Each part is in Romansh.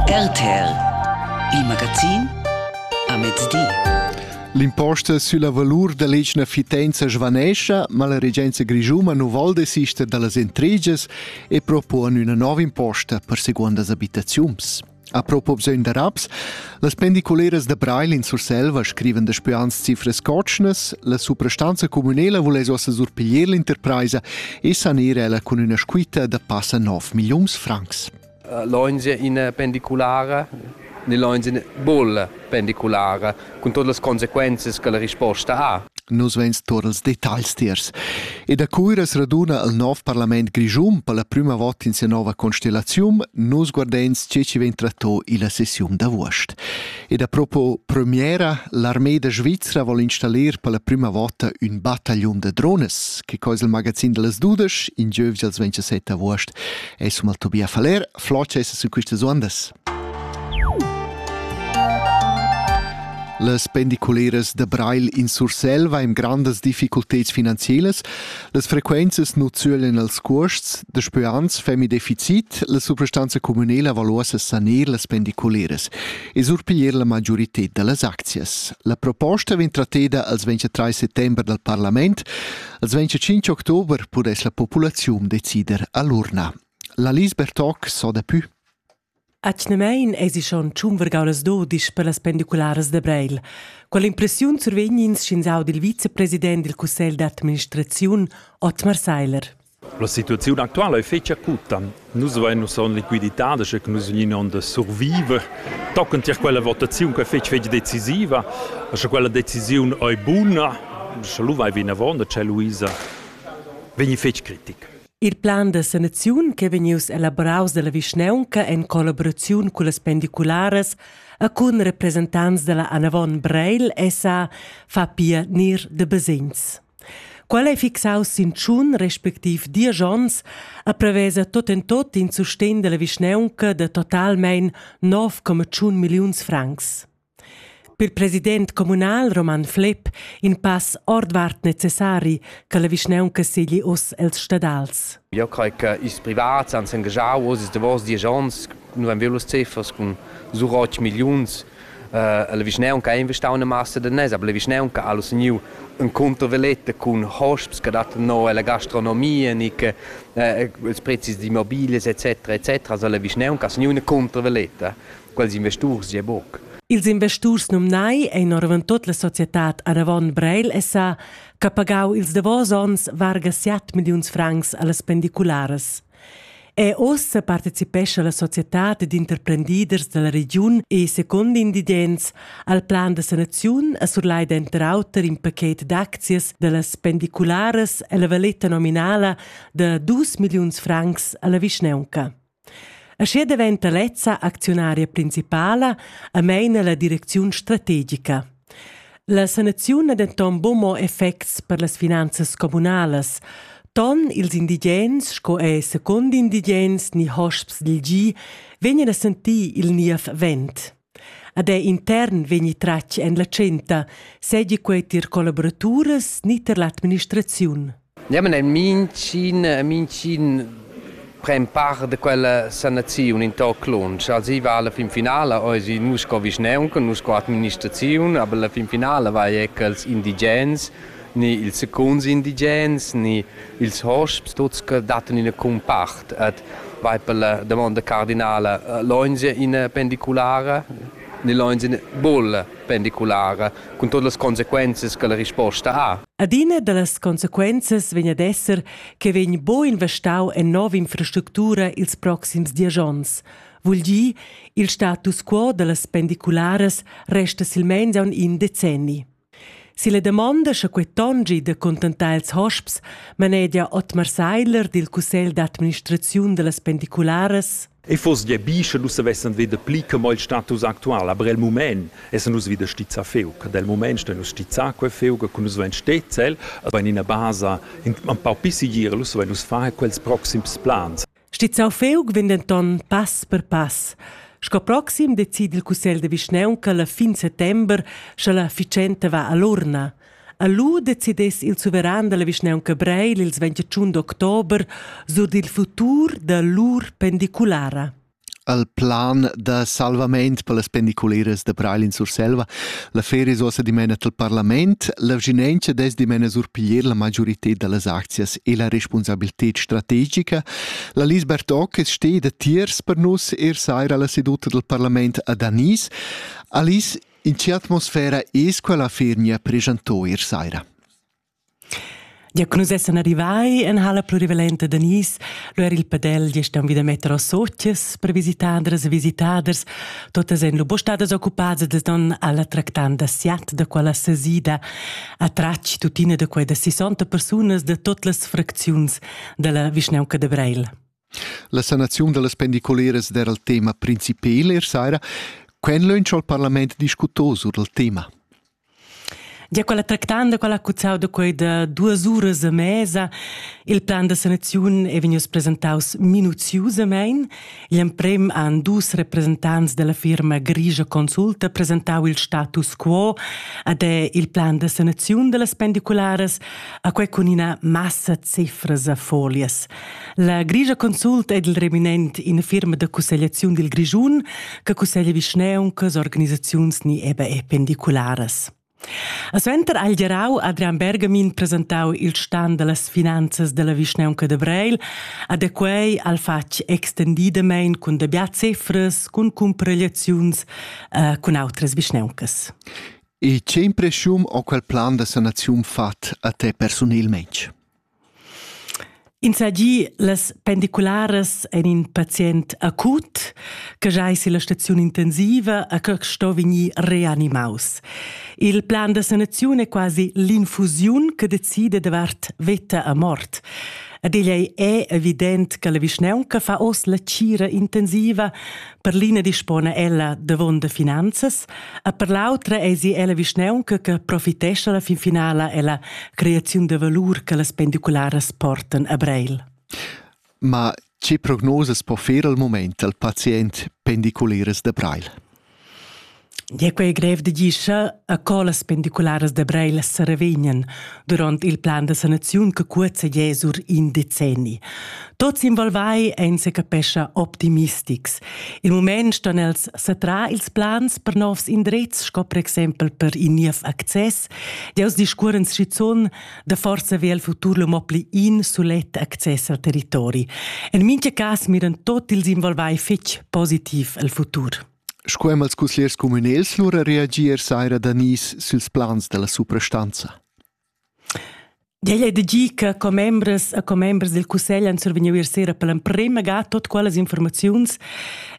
RTL Il magazin a mezdi. L'imposta sulla valur dell'etna fitenza svanescha, ma la regenza grischuma non vol desister dallas intrigas e propone una nuova imposta per secondas abitaziuns. A propos bisogn da raps, Las pendiculeras da Breil in Surselva scrivan daspö ans cifras cotschnas, la suprastanza communela voless ossa surpiglier l'interpraisa e sanir ella cun üna squitta da passa 9 milliuns francs. Eh, L'ONG in pendiculara nell'ONG bolla pendiculare, cun todas las conseguenze che la risposta ha. Nus vegns tur als detagls tiers. E da Cuira as raduna al nov parlament grischun per la prüma vot in sia nova constellaziun, nus guardens tge chi vegn tratto illa sessiun d'avuost. E da propo premiera, l'armée da Svizra vol installir per la prüma vota ün battagliun da drones, che cois il magazin da las dudesch, in giövgia als 27 avuost, es hum al Tobia Faller, flocha esa su quistas uondas. Las pendiculeras da Breil in Surselva ein grandas difficulteds finanzielas. Las frequenzas nu zölen als cuosts, da speans femi deficit, la substanza communela valuosa saner las pendiculeras e surpiglier la magiorited dallas aczias. La proposta vegn tratteda als 23 settember dal parlament, als 25 october pudess la populaziun decider all'urna. La Lisbeth Toc so da pü. Atgnamein eisi schon tschun vargaulas dudisch per las pendicularas da Breil. Quella impressiun survegn ins sch'ins audi il vicepresident dil cussegl d'administraziun, Otmar Seiler. La situaziun actuala è fetg acuta. Nus vein ussa en liquiditad, sche nus vegnin onn da surviver. Tochen tier quella votaziun che è fetg fetg decisiva, sche quella decisiun è buna, sche lu vai vinavon da Luisa, vegni fetg critic. Il plan da sanaziun ch'è vegnius elaboraus dalla vischnaunca en collaboraziun cullas pendicularas e cun representants dalla Anavon Breil SA fa pia nir de basegns. Qual ei fixaus sin tschun respectiv diesch onns a prevesa tot en tot in sustegn dalla vischnaunca de totalmein 9,1 milliuns francs. Per president communal Roman Flepp in pass ordvart necessari che la vischnaunca segli oz els stadals. Io crei che ils privats han s'engagau oz ils davos diesch onns, nu haben wir los Ziffers con so 8 Millions. Uh, la vischnaunca ha investau una massa de nes, aber la vischnaunca ha teniu un controveletta con hosps che dattan no alla gastronomia, niche uh, ils prezis di mobiles etc etc. Also la vischnaunca ha teniu una controveletta. quels investurs gie buc. Ils investurs numnai ein oravon tut la societad Aravon Breil SA che pagau ils davos onns varga 7 milliuns francs allas pendicularas. E ossa participescha la societad d'interprendiders dalla regiun e, secondo invidents, al plan da sanaziun a surlai denter auter in paket d'aczias dallas pendicularas e la valeta nominala da dus milliuns francs alla vischneunca. Aschia daventa lezza acziunaria principala e meina la direcziun strategica. La sanaziun ha denton buca mo effects per las finanzas communalas. Ton ils indigens sco ei secund indigens ni hosps dil gi vegnan a sentir il niev vent. Ad ei intern vegni tratg en la tschenta, seigi quei tier collaboraturas ni tier l'administraziun. Niamen en mincin, mincin prem part de quella sanaziun in toc lunsch. Also i va alla fin finala, ois nus sco vischneunca, nus sco administraziun, aber la fin finala vai ecco als indigens ni ils secuns indigens ni ils hosps tuts che dattan ina cumpart et vai per la domanda cardinala loinge in pendiculara ni loinge in bull pendiculara cun todas las consequences che la risposta ha. Adina da las consequences vegn ad esser che vegn bo investau en nova infrastructura ils proxims diesch onns. Vul dir, il status quo da las pendicularas resta silmeins aunc in decenni. Silla damonda sche quei tongi da contentar ils hosps manegia Otmar Seidler dil cussegl d'administraziun dallas pendicularas E foss gie bi, sche nus savessen veder pli che mo il status actual, aber el mument essen nus wieder stizza feu, che del mument stein nus stizza quei feu, che nus vein stezzel, aber in ina basa in un pau pisigir, nus vein nus far quels proxims plans. Stizzau feug vegn denton pass per pass. Sco proxim decide il cussegl de vischnaunca la fin settember, sche la ficenta va all'urna. A lu decidess il suveran dalla vischnaunca Breil ils 21 d'october sur dil futur da lur pendiculara. al plan da salvament per las pendiculeras da Breil in Surselva. La feria è ossa dimena al parlament. La vginenza des dimena surpiglier la majorità delle aczias e la responsabilità strategica. La Lis Bertoc steht da tiers per nus er saira la seduta del parlament a Danis. Alice, in che atmosfera es quella fernia presentò er saira? Ja che nus essan arrivai en halla plurivalenta da Nice, lu era il padel gest aunc vida metter als sozias per visitaders e visitaders. Totas ein lu stadas occupadas da don alla tractanda siat da quella sesida a tratg tuttina da quei da 60 persunas da tot las fracziuns dalla vischnaunca de Breil. La sanaziun dallas pendiculeras era il tema principal ier saira. Quen lönch al parlament discutò sur il tema? Gia quella tractanda, quella cuzzau da quei da duas uras a mesa, il plan da sanaziun è vegnius presentaus minuziusamein. Igl emprem han dus representants della firma Grigia Consulta presentau il status quo ad è il plan da sanaziun dellas pendicularas, a quei cun ina massa cifras a folias. La Grigia consult ed il reminent ina firma da cussegliaziun dil Grischun che cusseglia vischneuncas, organisaziuns ni EBE pendicularas. A suenter ha il gerau Adrian Bergamin presentau il stan dallas finanzas dalla vischneunca de Breil, a de quei al fatg extendidamein cun dabia cefras, cun cumparegliaziuns eh, cun outras vischneuncas. E che impression ho quel plan da sanaziun fat a te personelmente? Insagi las pendicularas ein in pazient acut che giai silla staziun intensiva a che sto vegnir reanimaus. Il plan da sanaziun è quasi l'infusiun che decide davart veta a mort. Ad egl ei evident che la vischnaunca fa oz la cira intensiva, Per l'ina dispona ella davon finanzas, e per l'autra eisi ella vischneunca che profitescha la fin finala ella creaziun de valur che las pendicularas portan a Breil. Ma che prognosas po fer al moment al pazient pendiculares de Breil? Gie quei grev da gischer a co las pendicularas da Breil seravegnan duront il plan da sanaziun che cuozza gie sur in decenni. Tuts involvai ein secapescha optimistics. Il mument ston els satrar ils plans per novs indrezs, sco per exempel per in niev access. Deus discuoren schizun da forsa ve el futur lo mo pli in sulet access al territori. En mincha cas miran tot ils involvai fetg positiv al futur. Sco ean als cusgliers cumünels lura reagier saira da nis süls plans da la suprastanza? Igl è da gi che commembras e commembers del cussegl han survegniu ier sera per l'emprema ga tot quellas informaziuns.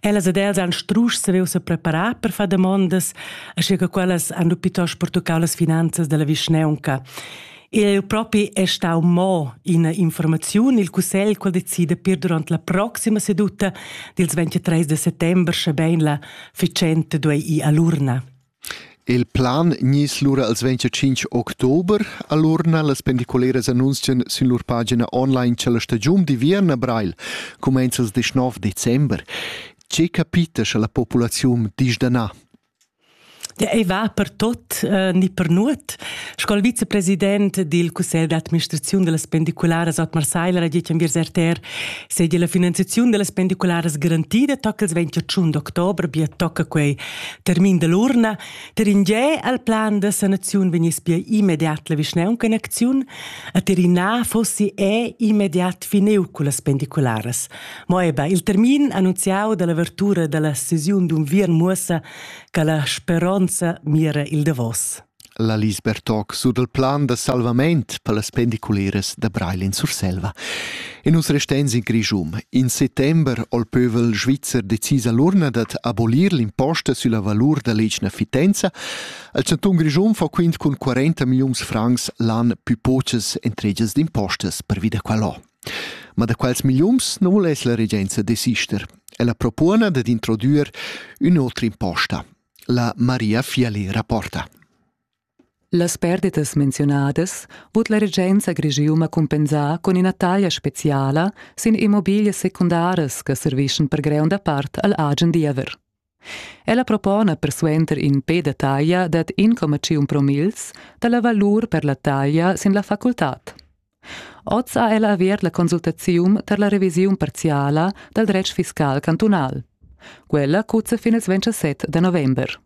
Ellas ed els han strusch saviu se preparar per far damondas, asche che quellas han lu piuttosto pertuccau las finanzas della vischneunca. Eu propi è stau mo ina informaziun, il cussegl qual decide per durant la proxima seduta dils 23 de settembre, sche bein la ficente duei i all'urna. Il plan nis lura als 25 october all'urna las pendicoleras annunzien sin lur pagina online c'è la stagiun di Vierna Breil, comenza il 19 december. Che capita sche la populazione disdana? ei va per tot eh, ni per nuot. Sco il vicepresident dil cussegl d'administraziun dellas pendicularas Otmar Seiler ha detg enviers RTR seigi la finanziaziun dellas pendicularas garantida toccals 21 d'october, bia tocca quei termin dell'urna. Per in ge al plan da sanaziun vegniss bia immediat la vischnaunca in acziun, a Tirina fossi è immediat fineu cullas pendicularas. Mo eba il termin annunziau dall'avertura dalla sesiun d'unviern muossa che la speronza mira il davos. La Lisbeth toc sur del plan da salvament per las pendiculeras da Breilin Surselva. E nus restens in Grischum. In settember ho il pövel svizzer decis all'urna dad abolir l'imposta sulla valur da l'egna fitenza. Il Cantun Grischum fa quint cun 40 milliuns francs l'an più poches entregias d'impostas per vida qualò. Ma da quels milliuns non voless la regenza desister. Ella propona dad introdüer ün'otra imposta, la Maria Fialera porta. Las perdetas menzionadas vot la regenza Grigiuma cumpensar con ina taglia speciala sin immobilie secundaras che servischen per greunda part al agen diever. Ella propona persuenter in pe da taglia dad 1,51 promils dalla valur per la taglia sin la facultad. Oz ha ella avert la consultaziun tar la revisiun parziala dal dretg fiscal cantunal. Quella cuzza fin il 27 da november.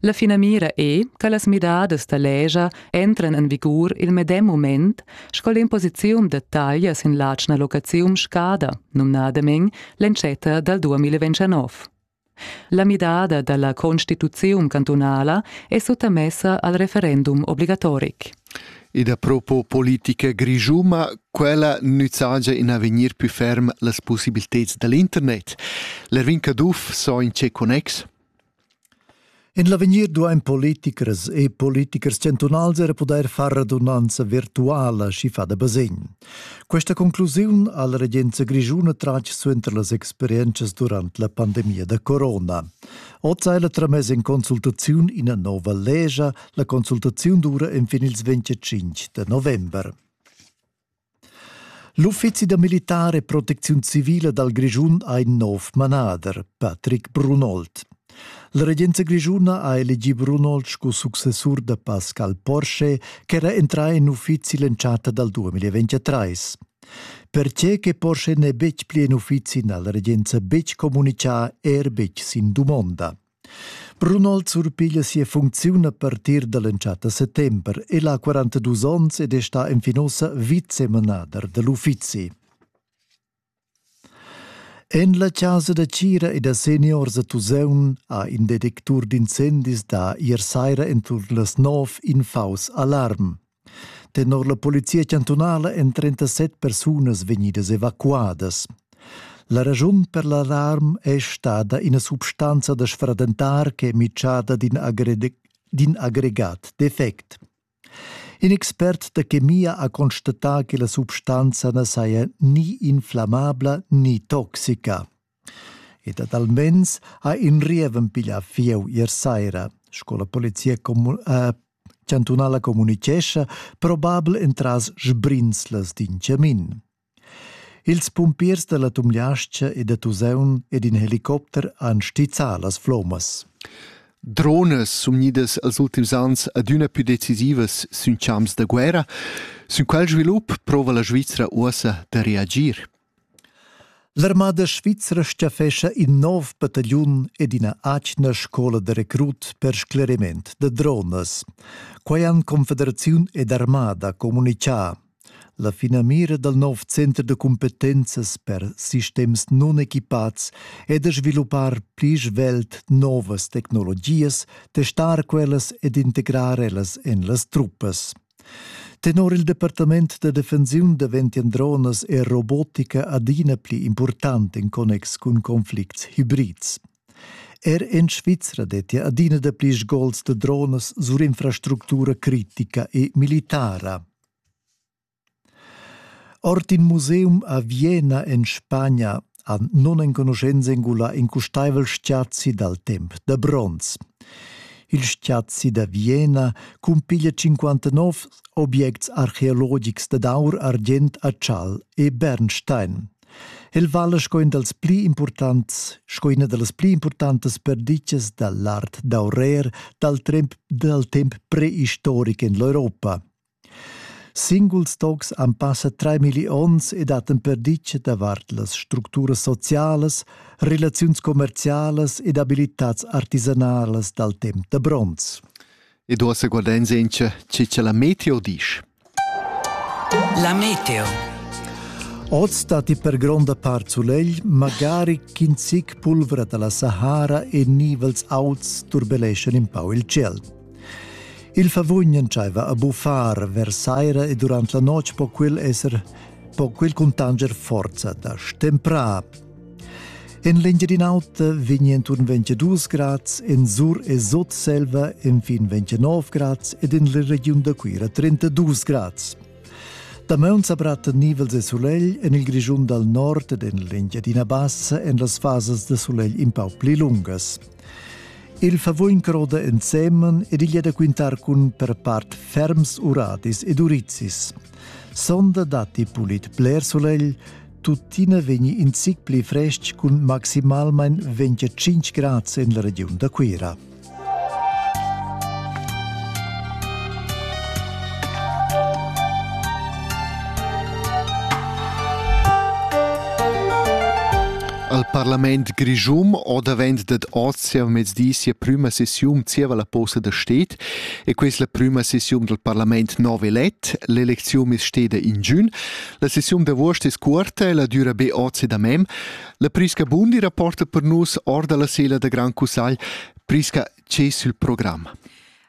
La finamira è che las midadas da legia entran en vigur il medem mument sco l'imposiziun da taglia sin l'atgna locaziun scada, numnadamein l'entschatta dal 2029. La midada dalla constituziun cantunala è suttamessa al referendum obligatoric. Ed a propos politica grigiuma, quella nüzzagia in avegnir più ferm las possibiliteds dall'internet. L'Erwin Caduff so in che connex? En l'avegnir duain politichers e politichers chantunals era pudair far radunanza virtuala schifa da basegn. Questa conclusiun ha la regenza grischuna tratg suenter las experientschas durant la pandemia da corona. Oz hai la tramess en consultaziun ina nova legia. La consultaziun dura enfin ils 25 da november. L'uffizi da militar e protecziun civila dal Grischun ha in nov manader, Patrick Brunold. La regenza grischuna ha elegì Brunold sco successur da Pascal Porsche ch'era entrà en uffizi l'entschatta dal 2023. Pertge che Porsche n'è betg pli en uffizi n'ha la regenza betg communitgà, er betg sin dumonda. Brunol surpiglia sia funcziun a partir dall'entschatta settember. El ha 42 onns ed è sta enfin ossa vicemanader dell'uffizi. En la casa da Cira e da seniors a Tuseun ha in detectur d'incendis da ier saira entut las nov in faus alarm. Tenor la polizia chantunala èn 37 persunas vegnidas evacuadas. La raschun per l'alarm è stada ina substanza da sfradentar ch'è mitschada d'in aggregat defect. In expert da chemia ha constatà che la substanza na saja ni inflammabla ni toxica. Ed ad almens ha in rieven piglià fieu ier saira, sco la polizia commun eh, chantunala communitgescha, probabel entras sbrinzlas d'in chamin. Ils pumpiers da la Tumliascha e da Tuseun ed in helicopter han stizzà las flommas. Drones sun gnidas als ultims ans adüna più decisivas sün champs da guerra. Sün quel svilup prova la Svizra uossa da reagir. L'armada svizra staffescha in nov battagliun ed ina atgna scola da recrut per scleriment da dronas. Quai han Confederaziun ed armada communitgà. La finamira dal nov center de competenzas per sistems non equipats è da sviluppar pli svelt novas tecnologias, testar quellas ed integrar ellas en las truppas. Tenor il departament da defensiun daventian dronas e robotica adina pli impurtant en connex cun conflicts hibrids. Er en Svizra dettia adina dapli sgols da dronas sur infrastructura critica e militara. Ord in museum a Vienna en Spagna han nunenconuschents engulà in custaivel stiazi dal temp da bronz. Il stiazi da Vienna cumpiglia 59 objects archeologics dad aur, argient, atschal e bernstein. El vala sco in dals pli importants, sco ina da las pli importantas perditgas da l'art d'aurer dal temp, dal temp preistoric en l'Europa. Singuls tocs han passa treimilli onns e dattan perditga davart las structuras socialas, relaziuns commercialas ed abilitads artisanalas dal temp da bronz. E do se guardenza in chi c'è la meteo disch. La meteo. Oz dati per gronda part sulegl, magari ch'in zic pulvra dalla Sahara e nivels auts turbeleschan in pau il ciel. Il favugn entscheiva a buffar vers saira e durant la notg po quel esser po quel cuntanger forza da stemprar. En l'Engiadin'Alta vegni intorno 22 grads, en Sur e Sotselva infin 29 grads ed en la regiun da Cuira 32 grads. Damaun sa bratta nivels e sulegl en il Grischun dal nord ed en l'Engiadina Bassa en las fasas da sulegl in pau pli lungas. Il favuin croda ensemen ed igl è da quintar cun per part ferms uradis ed urizis. Sonda datti pulit bler solegl, tuttina vegni in zic pli frestg cun maximalmain 25 grad en la regiun da Cuira. Al parlament grischum ho davent dad oz sia mezdi sia prüma sessiun zieva la posta da sted e questa la prüma sessiun dal parlament nov elet. L'elecziun es steda in giun. La sessiun d'avuost es cuorta e la düra be oz ed amem. La Prisca Bundi rapporta per nus or da la sela da Gran Cussagl. Prisca, che es il program?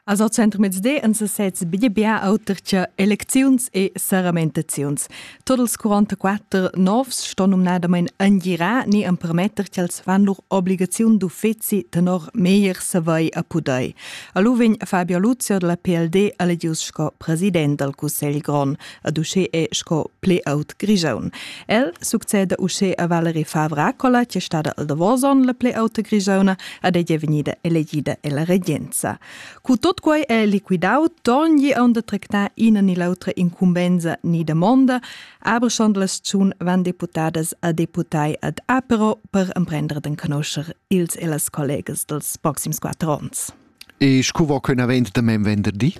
As hoz centrmezdi in sesez bia bia auter che elecziuns e saramentaziuns. Tot ils 44 novs ston numnadamain angirar ni empermetter ch'els fan lur obligaziun d'uffeci tenor meglier savai a pudai. A Luvin Fabio Luzio della PLD elegius sco president dal Cussegl Grond. ad uschè è sco ple aut Grigiaun. El succeda uschè a Valerie Favra Cola, che stada al Davoson la ple auta Grigiauna, ad ella venida elegida e la regenza. Cu tot quai è liquidau, togni on da tractar ina ni l'autra incumbenza ni demonda, abreschond las tschun van deputadas a deputai ad Apero per emprendere den conoscer ils e las collegas dels proxims quattro onns. E scu vo quei avent damain venderdi?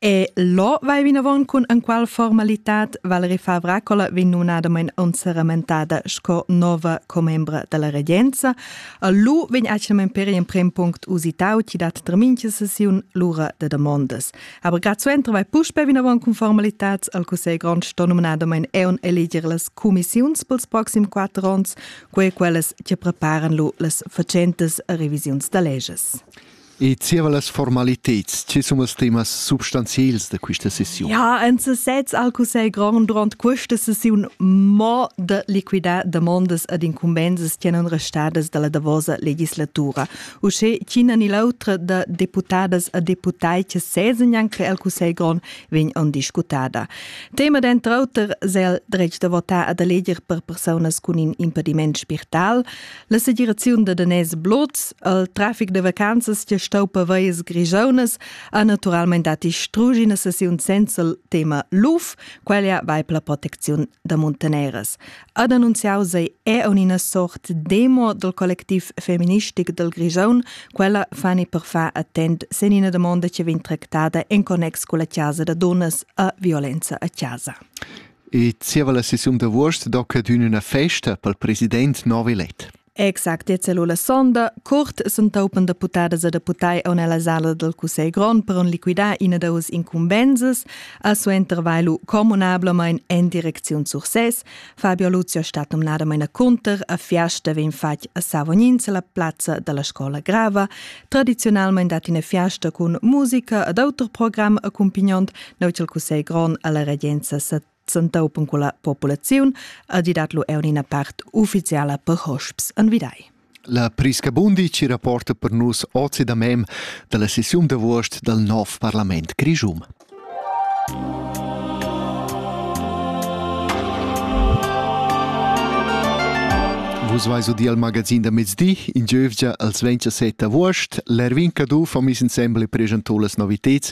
E lo vai vinavon cun enqual formalitat Valerie Favracola vegn nunadamain onseramentada sco nova commembra dalla regenza. Lu vegn actualment per emprem punct usitau chi dat terminche sessiun l'ura de demondas. Aber grad suenter vai puspe vinavon cun formalitats al Cussegl Grond sto nominadamain eon eleger las commissiuns pels proxim quatter ons quei quellas che preparan lu las facentas revisiuns da leges. E zieva las formaliteds, che sono els temas substanziels da questa sessiun? Ja, en sesez al Cussegl Grand durant questa sessiun mo de liquidar demandas ad incumbensas che non restadas dalla davosa legislatura. Usce ch'ina ni l'autra da deputadas a deputai che sesenyan che al Cussegl Grand vegn on discutada. Tema denter auter sel dretg da votar ad eleger per personas cun in impediment spirtal, la segiraziun da danès blots, al trafic de vacanzas che stau per veies grigiaunas ha naturalmente dati strugi una sessiun senza il tema LUF, quella vai per la protezione da montaneras. ad annunziau sei eun ina sort demo dal collectiv femministic dal Grisaun, quella fani per far attent sen ina domanda che vegn tractada en connex con la casa da dunnas a violenza a casa. E zieva la sessiun d'avuost do cadün üna festa pel president Novi Let. Exact, e cellula sonda, curt s'entaupan deputadas e deputai on ella sala del Cussegl grond per on liquidar ina da us incumbensas, a suo intervailu comunablemein en direcziun Sursès. Fabio Luzio stat nominadamain a cunter a fiasta vegn fatg a Savognin la plazza della scola grava. Tradizionalmein dat ina fiasta cun musica ed auter program accompagnant neu il Cussegl grond alla regenza tsentau pon quella populaziun e di dat lu er ina part ufficiala per hosps an vidai. La Prisca Bundi ci rapporta per nus ozi da mem dalla sessiun d'avuost dal nov parlament Grischum. Vus vais u di al magazin da mezdi, in giövgia als 27 avuost, l'Erwin Cadu fa mis insembel e pregento las noviteds